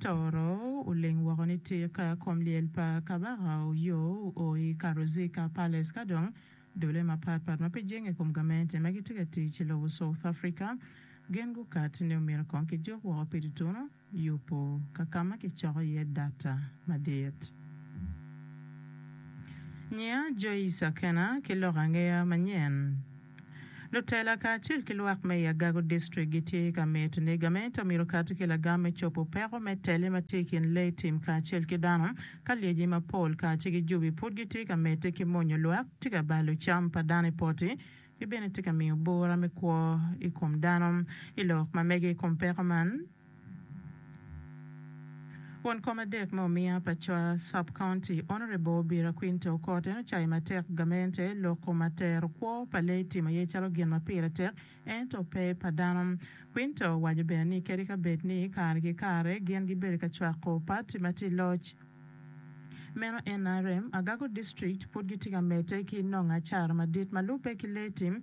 Toro oling woko ni tika kom lyel pa Kabaka oyo o i Karuzica Palace ka dong dule mapat pat ma pe jenge i kom gamente ma gitye ka tic i lobo South Africa gin gukat ni omyero kong kijuk woko pi tutunu yubo kakama kicoko iye data madit. Nyiya Joyce Akena ki lok angeya manyen. Lutela kacel ki lwak me i Agago District gitye ka mito ni gamente omyero okati ki lagam me cobo peko me tele ma tye i kin lee tim kacel ki dano ka lyeci mapol ka ci gijubi pud gitye ka medde ki monyo lwak tye ka balo cam pa dano i poti ki bene tye ka miyo bura me kwo i kom dano. I lok ma mege i kom peko man, Won kom adek me omiya pa Chwa Sub-County, Honourable Obira Quinte Okot, en ocayo matek gamente loko ma tero kwo pa lee timo aye calo gin ma pire tek ento pe pa dano. Quinte owaco bene ni kadi ka bed ni kare ki kare gin gibedo ka cwako pati ma tye i loc, meno nrm, Agago District pud gitye ka medde ki nongo acara madit ma lubbe ki lee tim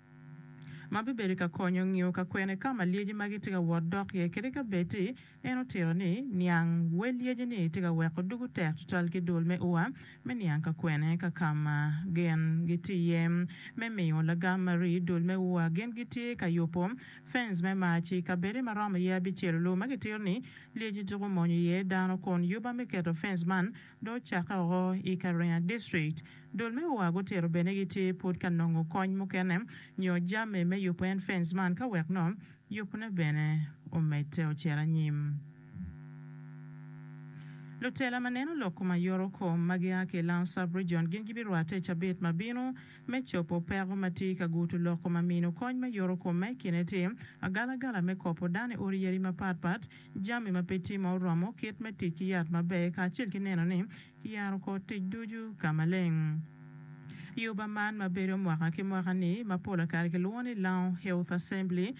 ma bibedo ka konyo ngiyo ka kwene ka ma lyeci magi tye ka wot dok iye kadi ka bed ni en otito ni niang wel lyeci-ni tye ka weko dugu tek tutwal ki dul me ua me niang ka kwene ka ka ma gin gitye iye me miyo lagam ma rii dul me ua gin gitye ka yubo fens me mac i kabedde ma romo iye abicel-lu ma kitito ni lyeci tuko monyo iye dano kun yuba me keto fens man Dong ocakke woko i Kariange district, dul me oa gutito bene gitye pud ka nongo kony mukene nyo jami me yubo en fence man ka wek nongo yubone bene omedde ocito anyim. Lutela ma neno lok kom aye oro kom ma gia ki i Lounge Sub Region gin gibirwatte i cabit ma bino me cobo peko ma tye ka gutu lok kom ma mino kony me yoro kom ma i kine tye agalagala me kopo dano i odi yadi mapat pat jami ma pe tye ma oromo, kit me tic ki yat maber, kacel ki neno ni kiyaro kor tic ducu ka maleng. I oba man ma bedo mwaka ki mwaka-ni, ma pol kare kilwongo ni Lounge Health Assembly,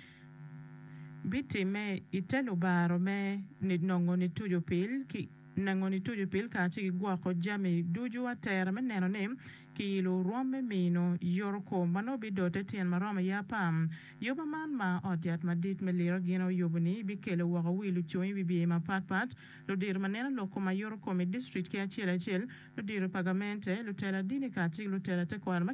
bitimme i te lubaro me ninongo nituco pil, ki nengo nituco pil kacel ki gwoko jami ducu atera me neno ni Kiyilo rwom me mino Yoriko ma nongo bidote tyen ma romo iye apar. Yoba man ma ot yat madit me liro gin oyubo-ni bikelo woko wi lucung i wi bye mapat pat, ludito ma neno lok kom a Yoriko me district ki acel acel, ludito pa gamente, lutela dini kacel ki lutela tekwaro ma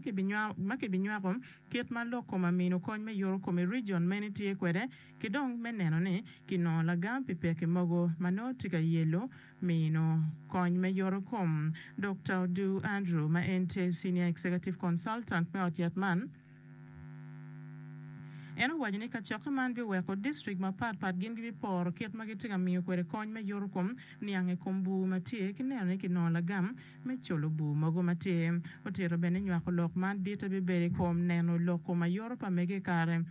kibinywako kit ma lok kom a mino kony me Yoriko me region meni tye kwede ki dong me neno ni kinongo lagam pi pekki mogo ma nongo tye ka yelo mino kony me yotokom. Dokta Odu Andrew, ma en tye Senior Executive Consultant me ot yat man, en owaco ni kacokke man biweko distrik mapat pat gin gibiporo kit ma gitye ka miyo kwede kony me yotokom niang i kom bur ma tye ki neno ni kinongo lagam me colo bur mogo ma tye. Otito bene ni nywako lok man ditte bibedo i kom neno loko ma yoto pa mege i kare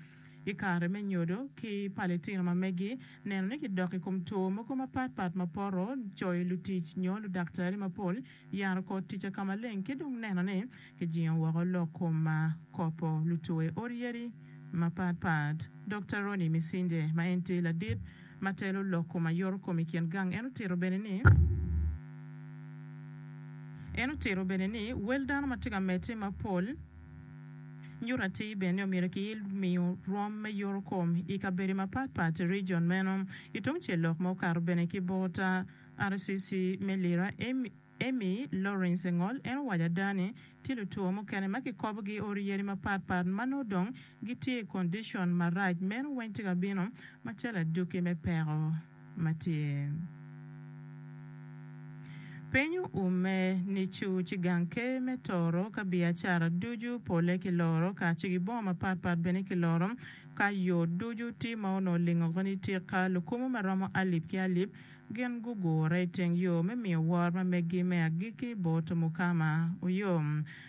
I kare me nyodo ki pa litino ma megi, neno ni kidok i kom two mogo mapat pat ma poto coyo lutic nyo ludaktari mapol, yaro kor tic akamaleng ki dong neno ni kijingo woko lok kom ma kopo lutwe oryeri mapat pat. Dokta Ronnie Misinde ma en tye ladit ma telo lok kom ayoro kom i kin gang en otito bene ni, En otito bene ni, Wel dano ma tye ka medde mapol, Nyuto atir bene ni omyero kiil miyo rwom me yuru kom i kabedo mapat pat i region meno. I tung cel lok ma okato bene ki bot RCC me Lira, Amy Lawrence Engol en owaco ada ni tye lutwo mukene ma kikobo gi odi yadi mapat pat ma nongo dong gitye i condition marac. Meno weng tye ka bino macalo aduki me peko. ma tye. Piny oume nicu ci gang ker me toro ka biacara ducu pole ki loro ka ci ki bongo mapat pat bene ki loro ka yo ducu ti ma onongo olingo oko ni tika lukumu ma romo alip ki alip gin gugure iteng yo me miyo wor ma meggi me agikki bot Mukama oyom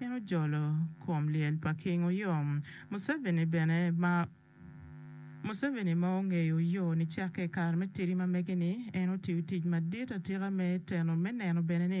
En ojolo kom lyel pa King Oyom Museveni bene ma Museveni ma ongeyo yo nicakke i kare me tidi ma mege-ni, en otiyo tic madit atika me teno me neno bene ni,